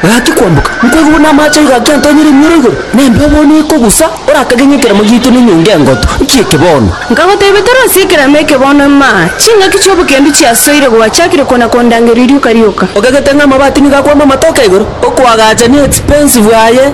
Gaki kwamboka, nkoigwa buna amache aiga akentoonyera emioro igoro, na embeo bono ekogusa, orakage ng'a ekeremo giaito nenyonga engotu, nki eke bono? Nkagoteebia tore ase ekeremo eke bono ema, ching'aki chi'obokendu chiasoire gwachakire kona kondangeria rioka rioka. Ogagete ng'a amabati nigo akwama amatoke igoro, okoagachania expensive aye.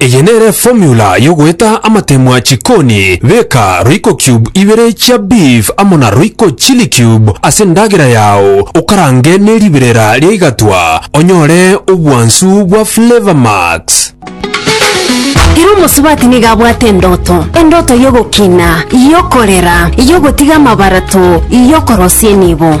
Eye nere formula yogoeta amatemwa chikoni, beka royco cube ibere chia beef amo na royco chili cube ase endagera yao okarange ne riberera ria igatwa onyore obwansu bwa flavor max. Ere omosubati nigo abwate endoto, endoto y'ogokina, y'okorera, y'ogotiga amabarato, y'okorosia enibo.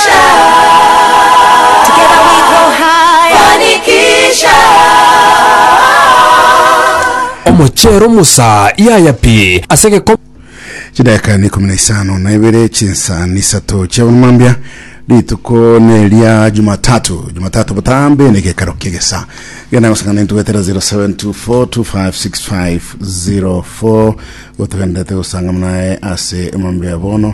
Together we go higher. Fanikisha. Omochero Musa yaya pi ase egekombe. Chidakika ni ikumi na isano na ibere chinsa nisato chiabono mambia rituko neria jumatatu jumatatu botambe ne gekaro kiegesa genda gosangana intubetera 0724256504 gotugendete gosanga mnae ase mambia bono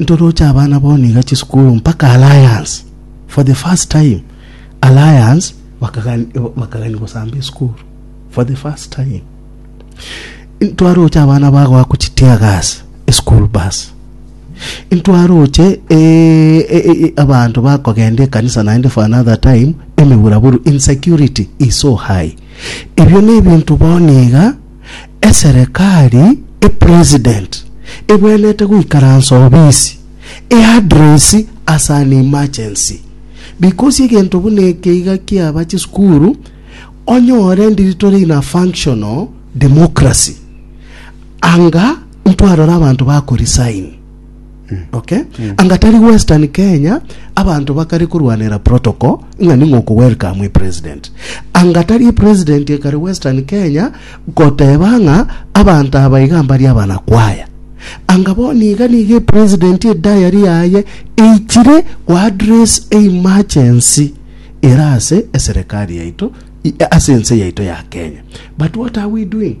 Ntoroche abana bono iga chisukuru mpaka Alliance. For the first time Alliance bakagani- eh, bakagani gosamba esukuru for the first time ntwaroche abana bagoa kuchitia gas esukuru bus ntwaroche eh, eh, eh, abanto bakogenda ekanisa naende for another time emeburaburu insecurity is so high ebio nebinto bono iga Eserekari, epresident, ebwenerete goikaransa obisi, eadresi as an emergency. Because egento buna eke iga kiaba chisukuru, onyore ndiri tore in a functional democracy. Anga ntwarore abanto bakoresign. Okay? Anga tari Western Kenya abanto bakare korwanera protocol ng'a ning'o oku welcome president. Anga tari president ekare Western Kenya goteba ng'a abanto aba iga mbari abanakwaya. Anga boni iga niga president e diary yaye eichire go address emergency erase eserekari yaito i- ase ense yaito ya Kenya. But what are we doing?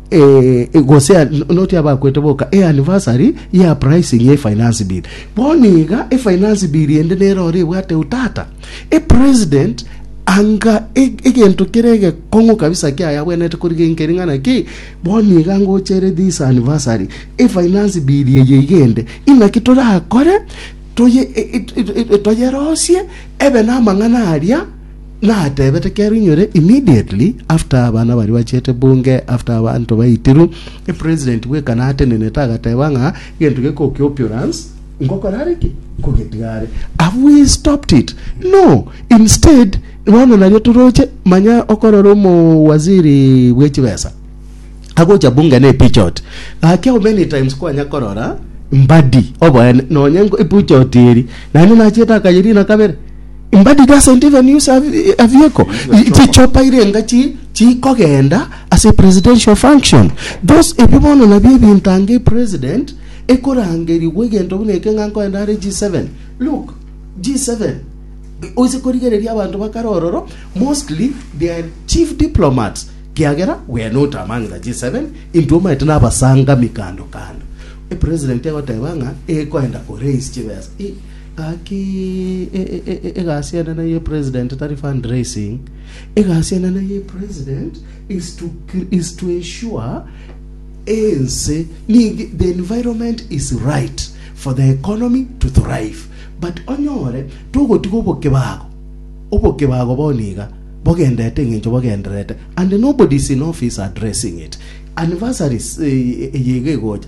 eh, gose a- no- noti abakwete boka eanniversary ya pricing ya efinance bill bono iga efinance bill ende nero ore ebwate utata epresident anga e- egento kere egekong'u kabisa kiayabwenete korigenkeri ng'ana ki bono iga ngochere this anniversary efinance bill eye iga ende inaki torakore toye e- e- e- e- toyerosie ebe namang'ana aria Natebete kero inyore immediately after abana baria bachete bunge after abanto baitiru e president bwekana atenenete agateba ng'a gento geko ki oppurance ngokora are ki nkogetiga are have we stopped it no instead bono nario toroche manya okorora omo waziri bwe chibesa agocha bunge ne pichot gaki how many times kwanya korora mbadi oboene nonye ipuchot eri nani nachete akayerina kabere Mbadi doesn't even use a, a vehicle. Chichopa. Chichopa irenga chi chikogenda as a presidential function. Those ebi bono nabio ebinto ange president ekorangerigwa egento buna eke ng'a nkoenda are G7. Look, G7 oise korigereria abanto bakare ororo mostly they are chief diplomats kiagera we are not among the G7 intwe omanyete nabasangami kando kando. E president egoteba ng'a ekoenda ko raise chibesa. I- Gaki egasi enene ye president tari fundraising, egasi enene ye president is to is to ensure ense ninki the environment is right for the economy to thrive but onyore togotiga obokebago obokebago bono iga bogendete engencho bogenderete and nobody is in office addressing it anniversaries eye iga egocha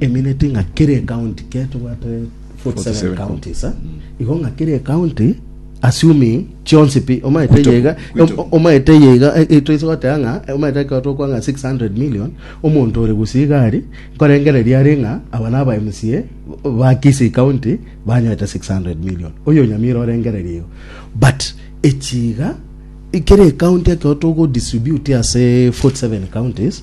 emineti ng'a kere ekaunti kere tobwate 47 counties eh? igo ng'a kere ekaunti assuming chionsi pi omaete Kwito- yega kwito. o- omaete yega etoise goteba ng'a eh, omaete ekero tokwa ng'a 600 million omonto ore gusii gari nkorengereria are ng'a aba na aba mca ba Kisii county banyoete 600 million oyo nyamira orengereria igo but echiga kere ekaunti ekero togodistribute ase 47 counties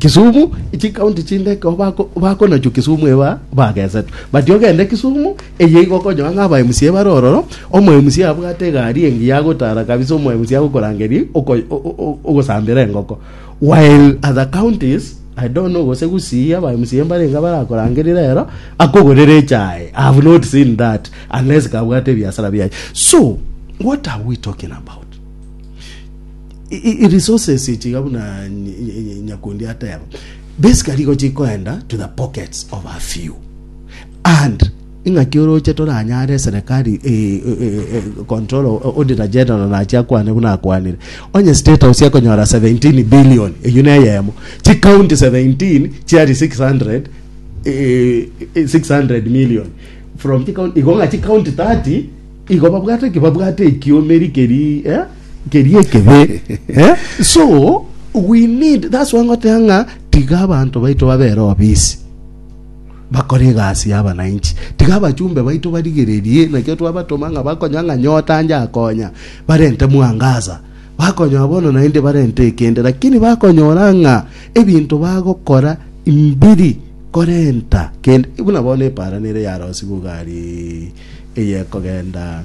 Kisumu echi county chinde ekero bako- bakonachwa Kisumu eba bagesetwe but ogende Kisumu eye igo okonyora ng'a aba MCA bare ororo omo MCA abwate egari engiya agotara kabisa omo MCA agokorangeria oko- o- o- o- ogosambera engoko while other counties I don't know gose Gusii aba MCA mbarenge barakorangeria rero akogorere echae I have not seen that unless kabwate ebiasara biaye so what are we talking about resources echi iga buna nyakundi ateba basically igo chikoenda to the pockets of a few and ing'aki oroche toranyare serikali control auditor general nachi akwane buna akwanire onye state house ekonyora 17 billion eyu neyemo chicounty 17 chiari 600 600 million from chicounty igo ng'a chicounty 30 igo babwate ki babwate ekiomeri keri eh? nkeria ekebe eh? so we need that's why ngotea ng'a tiga abanto baito babere obisi bakore egasi y'abananchi tiga abachumbe baito barigererie nakio twabatoma ng'a bakonya ng'a nyota nje akonya barente mwangaza bakonya bono naende barente ekende lakini bakonyora ng'a ebinto bagokora mbiri korenta kende buna bono eparanere ya rosi bugari eyekogenda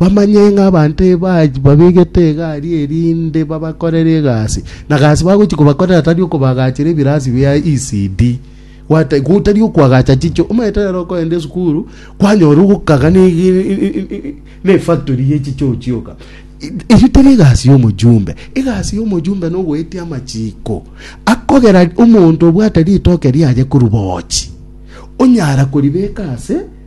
Bamanye ng'a abanto babegete egari erinde babakorere egasi, na gasi bagochia kobakorera tari okobagachera ebirasi bia ECD, gwata gotari okoagacha chiche. Omanyete rero okoenda esukuru kwanyora ogokaga ne ne efactory ye chiche ochioka. Eyio teri egasi ya omojumbe. Egasi ya omojumbe na ogoetia amachiko akogera omonto obwate ritoke riaye korwa boochi, onyara koribeka ase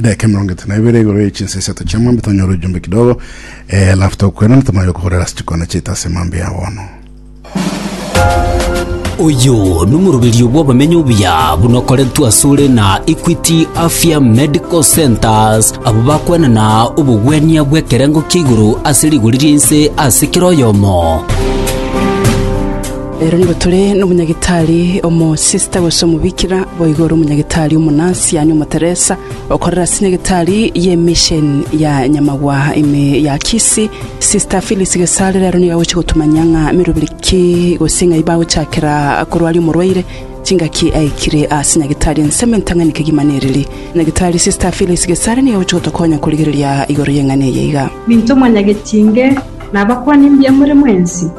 Edaika emerongo etano nebere igoro ye chinsa isato chia mambia tonyore ojumbe kidogo eh, alafu tokwena ntomanye okogorera ase chikona chiaito ase mambia ya bono. Oyo nomoroberio bw'abamenyi obuya buna okorentwe asore na Equity Afya Medical Centers abo bakwenana obogwenia bw'ekerengo kia igoro ase rigori ri'ense ase kera oyomo. Ero nigo tore nomonyagitari omosista gose omobikira, boigo ore omonyagitari omonasi, yaani omoteresa, okorera ase nyagitari y'emesheni ya Nyamagwa ime ya Kisii. Sista Phyllis Gesare rero nigo agochia gotomanyia ng'a meroberi ki gose ng'ai bagochakera korwaria omorwaire, chingaki aikire ase nyagitari, ensemo entang'ani kegima neriri. Nyagitari Sista Phyllis Gesare nigo agochia gotokonya korigereria igoro y'eng'ana eye iga. Minto mwanyagetie inge nabakwani mbuya more mwensi.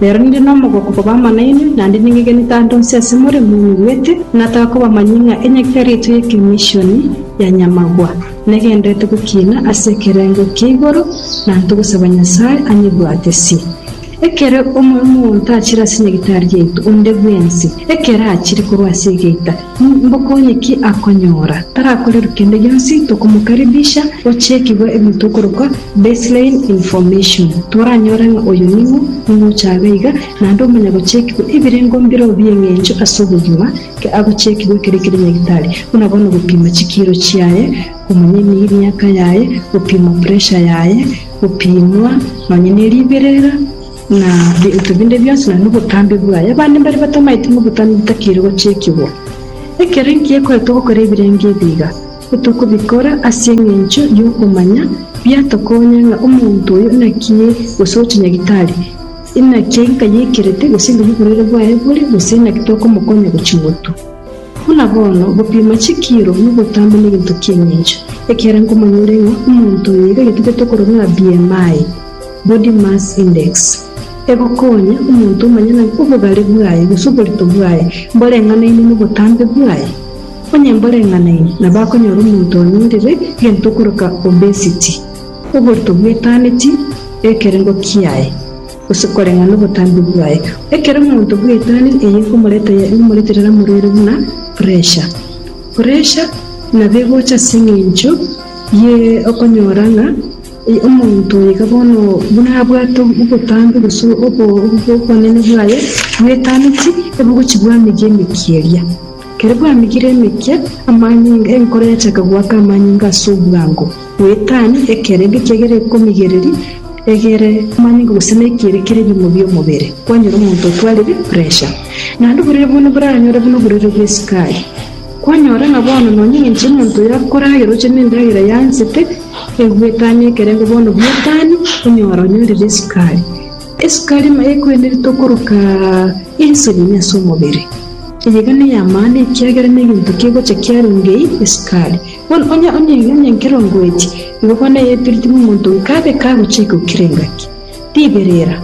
Nere ninde nomogoka obo bamanaine, na ninde ningegeni tande onsi ase more moinyigwete, ng'a takobamanyia ng'a enyakio ya rietwa y'ekemishoni ya Nyamagwa negenderete gokiina ase ekerengo kia igoro, na ntogosaba Nyasae anyebwatesie. Ekero omoyo omonto achire ase nyagitari yaito onde bwensi, ekero achire korwa ase egeita, Mbokonye ki akonyora? Tarakorerwe kende gionsi, tokomokaribisha gochiikigwa ebinto okorokwa baseline information. Twaranyore ng'a oyo ning'o, ning'o ochabe iga, naende omanya gochiikigwa ebirengo mbireo bi'eng'encho ase obogima, ki agochiikigwa ekero kire nyagitari, buna bono gopima chikiiro chiaye, komanya emiaka yaye, gopima pressure yaye, gopimwa nonya neriberera, na ebinto binde bionsi na nobotambe bwaye. Abande mbare batamaete ng'a obotambe botakeire gochiikigwa. Ekero inki gekore togokora ebirenge ebi iga? Otokobikora ase engencho y'okomanya biatokonya ng'a omonto oyo naki gose ogocha nyagitari, inaki enka yaikerete, gose enka y'oborwaire bwaye bore, gose inaki tokomokonya gochia ing'otu. Buna bono, ogopima chikiiro nobotambe negento ki'engencho, ekiagera nkomanyore ng'a omonto oyo nigo agetete tokorora ng'a BMI, Body Mass Index, egokonya omonto omanye ng'a obogare bwaye gose oborito bwaye mboreng'anaine nobotambe bwaye. Onye mboreng'anaine, nabo akonyora omonto onyorire gento okoroka obesity, oborito bwetaneti ekerengo kiaye. gose koreng'a nobotambe bwaye. Ekero omonto bw'etani eye ekomoreta yaria omoreterera morwere buna puresha. Puresha nabo egocha ase engencho ye okonyora ng'a omonto oyo iga bono buna abwate obotambe gose obonene bwaye bw'etani ti ebugochi bw'amege emeke eria. Ekero bwamigire emekia, amanyinga, enkoro yachaka goaka amanyinga ase obwango, goetania ekero erio kiagera ekomigereria egere amanyinga gose na ekiere kere ebiimo bi'omobere, kwanyora omonto otwarire puresha. Naende oborere bono boranyore buna oborere bw'esukari. Kwanyora ng'a bono nonya engencho y'omonto oyo akore aye roche n'endagera y'ansete, egoetania ekerengo bono bw'etani, onyora onyorire esukari. Esukari maya ekwenderete okoroka ense nonya ase omobere, eyeiga ney'amano, ekiagera negento kegocha kiarenge ii, esukari. Bono onye onye onye nkerongoeti, igo bono eye epiriti bw'omonto oyo kabe kagochika gokira engaki. Ribere era,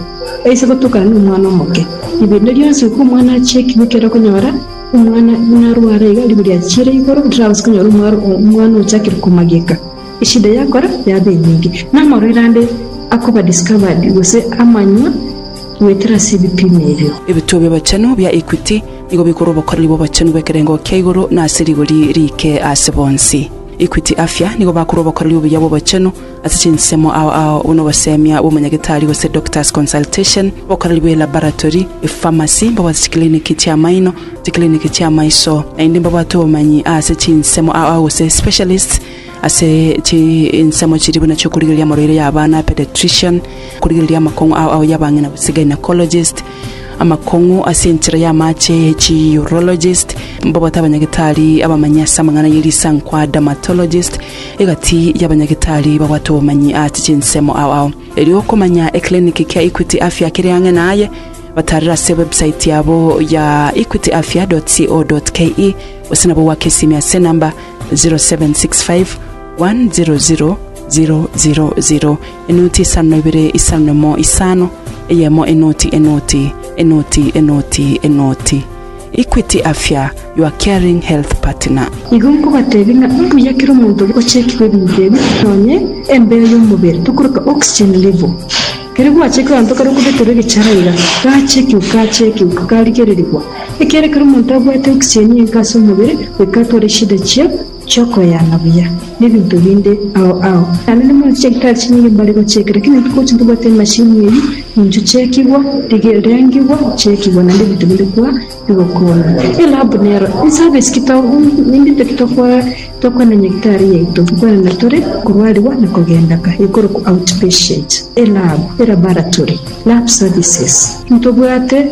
aise gotokana nomwana omoke. Ribere eri rionsi goika omwana achiekigwe ekero okonyora omwana buna arware iga, ribu riachiire igoro, rirabase konyora omwaro omwana ochakire komageka. Eshida yakora yabe enyinge, na amarwaire ande akoba discovered gose amanywa goetera ase ebipimo ebio. Ebituo bi'obochenu bia Equity nigo bikore obokoreri bw'obochenu bw'ekerengo kia igoro na ase rigori riike ase bonsi. Equity Afya nigo bakore obokoreri obuya bw'obochenu ase chinsemo ao ao buna obosemia bw'omonyagetari gose doctor's consultation, obokoreri bwe laboratory, epharmacy, mbabazi chikiliniki chi'amaino, chikliniki chi'amaiso, naende mbabwate obomanyi ase chinsemo aa gose specialists ase chinsemo chiria buna chi'okorigereria amarwaire ya abana, pediatrician, okorigereria amakong'u ao ao y'abang'ina gose gynaecologist, amakong'u ase enchera y'amache chi urologist, mbabwate abanyagetari abamanyi ase amang'ana ye risankwa dermatologist, egati y'abanyagetari babwate obomanyi ase chinsemo ao ao. Erio okomanya eclinic kia Equity Afya kere ang'e naye, batarera ase website yabo ya equityafya.co.ke gose nabo gwake esimi ase enamba 0765 100 000. Enoti isano na ibere isano na emo isano, eyemo enoti enoti enoti enoti enoti. Equity Afya, your caring health partner. Igo nkobatebia ng'a mbuya kera omonto oria ochekigwe ebinto ebi, nonye embeyo y'omobere, tokoroka oxygen level. Kere gwachekigwa abanto kare okobeterwa egechara iga, gachekigwa, gachekigwa, garigererigwa. Ekiagera kera omonto abwate oxygen enke ase omobere, goika atware eshida chia. chi'okoyana buya, na ebinto binde ao ao. Naende nimoreti chigitari chinyinge mbare gochieka, lakini eki gochia ntobwate emashini eyio, nincho chiekigwa, rigiri rengigwa, chiekigwa, naende ebinto binde kwa bigokonya. Elab nero eservice ki to ninto ki tokwa tokwana nyagitari yaito, tokwanana tore korwarigwa na kogenda ka, ekorokwa outpatient, elab, elaboratory, lab services. Ntobwate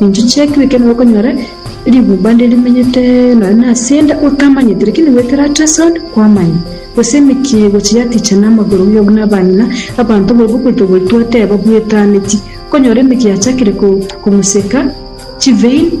Ninche chi'ekero ekero narokonyora rigumba nde rimenyete nonya nasende otamanyeti, lakini goetera ase esoni kwamanya, gose emechie egochia yaticha namagoro iga buna abanyina, abanto barabwo goita goitwa tebabwetaneti, okonyora emechie yachakire kong'useka chivein.